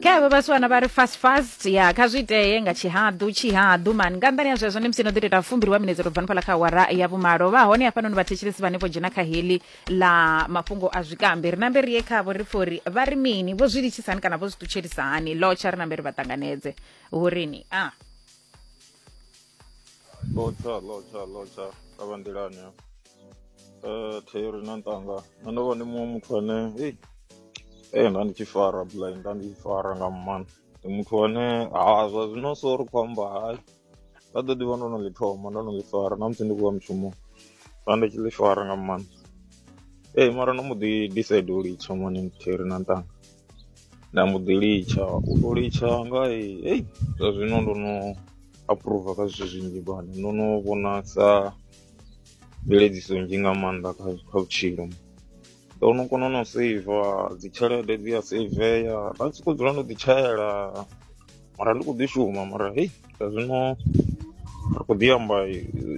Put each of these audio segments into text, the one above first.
kha avha vhasiwana vha ri fast fast ya kha zwi itee nga tshihaḓu tshihaḓu mani nga nḓani ya zwezwo ndi musi no ḓi tou ita fumbili wa minetse to bva nifhala kha awara ya vhumalo vha hone hafhanoni vhathetshelesi vhane vho dzhena kha heḽi ḽa mafhungo a zwikambi ri nambe ri ye khavho ri pfhe uri vha ri mini vho zwi litshisa hani kana vho zwi ṱutshelisa hani lotsha ri nambe ri vha ṱanganedze hu rini a lotsha lotsha lotsha a vha nḓilani ya eh, theori na nṱanga nṋe ndo vha ndi muṅwe muthu ane ei ee nda ndi tshi fara blind nda ndi tshi fara nga mmana ndi muthu ane ha zwa zwino so ri khou amba hai nda ḓo ḓivha ndo no ḽi thoma ndo no ḽi fara na musi ndi khou ya mushumoni nda ndi tshi ḽi fara nga mmana ee mara no mbo ḓi decide u litsha mani theori na nṱanga nda mbo ḓi litsha u to litsha nga he ei zwa zwino ndo no approva kha zwithu zwinzhi bana ndo no vhona sa mveledziso nzhi nga maanḓa kha kha vhutshilo ndo no kona no seiva dzitshelede dzi a seiveya nda soko dzula ndo ḓi tshaela mara ndi khou ḓi shuma mara hei zwa zwino ri khou ḓi amba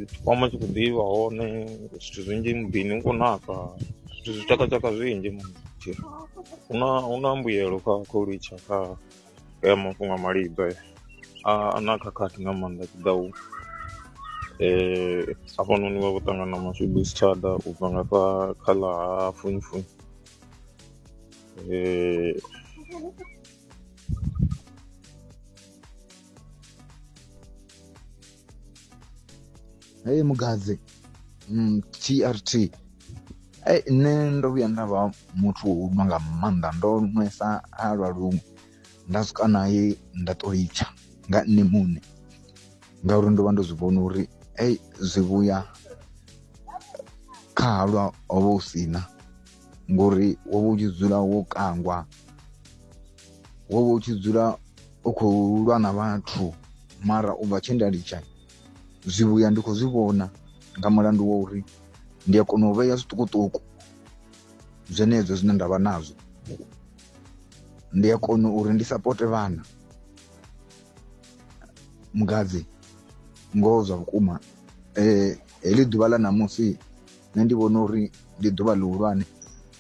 tshikwama tshi khou ḓivha hone zwithu zwinzhi muḓini u khou naka zwithu zwi tshakatshaka zwinzhi mutshira huna huna mbuyelo kha kha u litsha kha ya mafhungo a malibva a na khakhathi nga maanḓa tshi ḓa u um hafhanoni vha vho ṱangana mashudu si tshada u bva nga kha kha ḽa ha funifuni um hei mugadzi mm, trt ei nṋe ndo vhuya nda vha muthu wo nwa nga maanḓa ndo nwesa ha lwa luṅwe nda swika naye nda to litsha nga nṋe muṋe ngauri ndo vha ndo zwi vhona uri ei zwi vhuya kha halwa ho vha hu sina ngori wo vha u tshi dzula wo kangwa wo vha u tshi dzula u khou lwa na vhathu mara u bva tshe nda litsha zwivhuya ndi khou zwi vhona nga mulandu wa uri ndi a kona u vhea zwiṱukuṱuku zwenezwo zwine nda vha nazwo ndi a kona uri ndi sapote vhana mugadzi ngoho zwa vhukuma eh, heḽi ḓuvha ḽa ṋamusi nṋe ndi vhona uri ndi ḓuvha ḽihulwane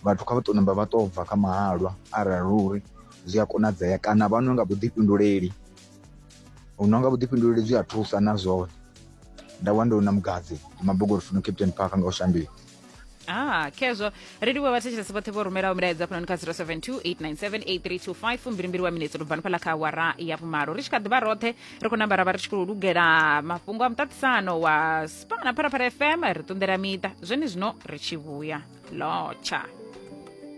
vhathu kha vha tou namba vha tou bva kha mahalwa arali uri zwi a konadzea kana vha nwe nga vhuḓifhinduleli u nwa nga vhuḓifhinduleli zwi a thusa na zwone nda wana ndo na mugadzi ndi mabogori funo captain park nga u shandula Ah, khezwo ri livhuwa vhathetshelesi vhoṱhe vho rumelaho milaedza khonani kha 0728978325 fumbilimbili wa minetse lubvani fhala kha awara ya vhumalo ri tshi kha ḓivha roṱhe ri khou namba ra vha ri tshi khou lugela mafhungo a muṱaṱisano wa pano na pharafara fm ri ṱunḓela miṱa zwenezwino ri tshi vhuya lotsha